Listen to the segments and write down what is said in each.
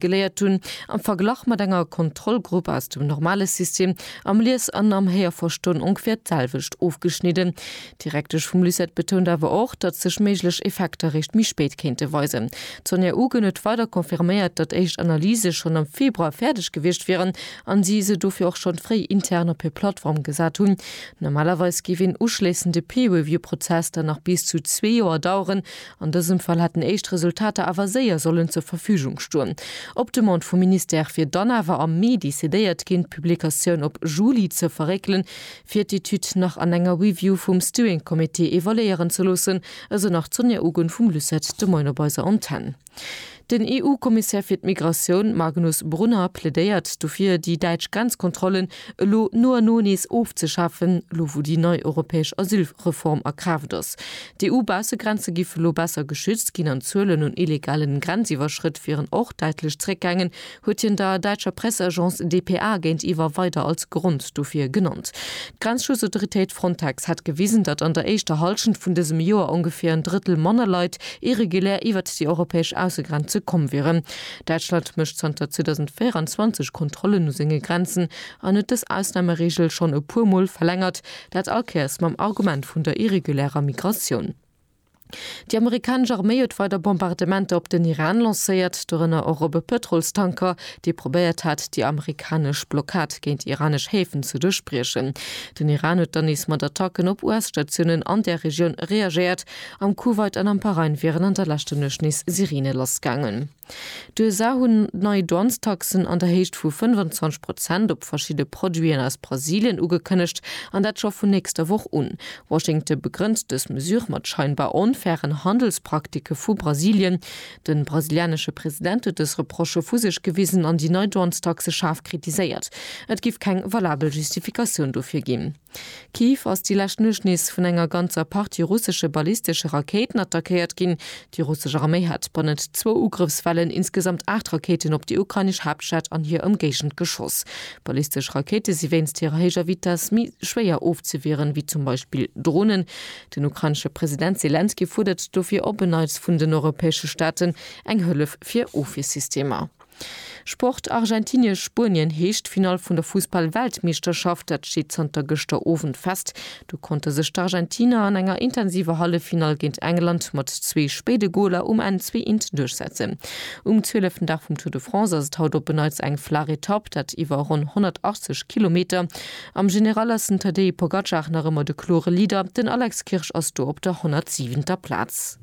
Geléiert hunn, am Verglach mat enger Kontrollgrupp aus dem normale System, am Lies an am Héierverstoen ongeféier d'selwecht ofgeschnidden. D'Direktesch vum LUCET betount awer och, datt sech méiglech Effekter réischt méi spéit kéinte weisen. D'Sonja Ugen huet weider confirméiert, datt éischt Analyse schonn am Februar fäerdeg gewiescht wieren a si se dofir och schonn fréi intern op hir Plattform gesat hunn. Normalerweis géif een uschléissende Peer-Review-Prozess dann nach bis zu zwee Joer daueren. An dësem Fall hätten éischt Resultater awer séier sollen zur Verfügung stoen. Op Demande vum Ministère wier dann awer am Mee decidéiert ginn, d'Publikatioun op Juli ze verréckelen, fir d'Etüd nach an enger Review vum Steering Committee evaluéieren ze loossen, esou nach d'Sonja Ugen vum LUCET de Moien op eiser Antenn. Den EU-Kommissär fir d'Migratioun Magnus Brunner plädéiert dofir, déi däitsch Grenzkontrollen elo no an no nees ofzeschafen, elo wou déi nei europäesch Asylreform a Kraaft ass. D'EU-Baussegrenze géife lo besser geschützt ginn an d'Zuelen un illegalen Grenziwwerschrëtt wieren och däitlech zeréckgaangen, huet hien der däitscher Presseagence dpa géintiwwer weider als Grond dofir genannt. D'Grenzschutzautoritéit Frontex hätt gewisen, datt an der éischter Hallschent vun dësem Joer ongeféier en Drëttel manner Leit irregulär iwwert déi europäesch Aussegrenze komm wieren. Däitschland mécht zanter 2024 Kontrollen u senge Grenzen an huet dës Ausnamereegel schonn e puer Mol verlängert, dat all Kéiers mam Argument vun der irregulärer Migratioun. Déi amerikanesch Arméi huet weider Bombardementer op den Iran lancéiert, dorënner och op e Pëtrolstanker, dee probéiert hat, déi amerikanesch Blockad géint iranesch Häfen ze duerchbriechen. Den Iran huet dann nees mat Attacken op US-Statiounen an där Regioun reagéiert. Am Kuwait an am Bahrain wieren an der leschter Nuecht nees Sirene lassgaangen. D'USA hunn nei Douanestaxen an der Héicht vu 25 Prozent op verschidde Produiten aus Brasilien ugekënnegt, an dat scho vun nächster Woch un. Washington begrënnt dës Mesure mat scheinbar onfairen Handelspraktiken vu Brasilien. De brasilianesche President huet dës Reprochë vu sech gewisen an déi nei Douanestaxe schaarf kritiséiert. Et giff keng valabel Justifikatioun dofir ginn. Kiew ass déi lescht Nuecht nees vun enger ganzer Partie russesche ballistesche Rakéiten attackéiert ginn. Déi russesch Arméi hat bannent zwou Ugrëffswellen insgesamt aacht Rakéiten op déi ukrainesch Haaptstad an hir Ëmgéigend geschoss. Ballistesch Rakéite si wéinst hirer héijer Vitess méi schwéier ofzewieren, ewéi zum Beispill Dronen. Den ukrainesche President Selenskyj fuerdert dofir op en Neits vun den europäesche Staaten eng Hëllef fir Ofwiersystemer. Sport, Argentinien, Spuenien, Heeschtfinall vun der Fussball-Weltmeeschterschaft, dat steet zanter gëschter Owend fest. Do konnte sech d'Argentiner an enger intensiver Halleffinall géint England mat zwee spéide Goler um Enn zwee int duerchsetzen. Um zwieleften Dag vum Tour de France ass et haut op e Neits eng flaach Etapp, dat iwwer ronn 180 Kilometer. Am General ass den Tadej Pogacar nach ëmmer de klore Leader, den Alex Kirsch ass do op der 107. Plaz.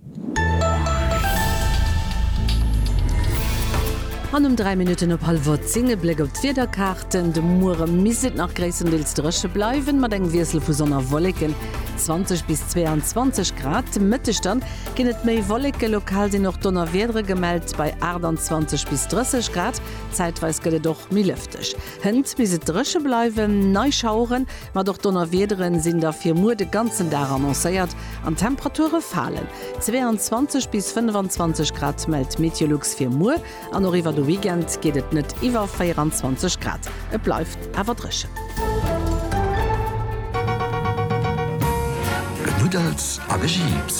An um 3 Minutten op hallwer 10 e Bléck op d'Wiederkaarten, De Muere misst et nach gréisstendeels dréche bleiwen, mat engem Wiessel vu Sonn a Wolleken, 20 bis 22 Grad. De Mëtteg da ginn et méi Wolleken, lokal sinn och Donnerwiedere gemellt bei 28 bis 30 Grad. Zäitweis gëtt et och méi lëfteg. Hënt bis et dréche bleiwen. Nei Schaueren, mat och Donnerwiederen sinn da fir muer de ganzen Dag annoncéiert an d'Temperature falen. 22 bis 25 Grad mellt Meteolux fir muer an och iwwer de Weekend geet et net iwwer 24 Grad. Et bleift awer dréchen. Genuddels a gejiips,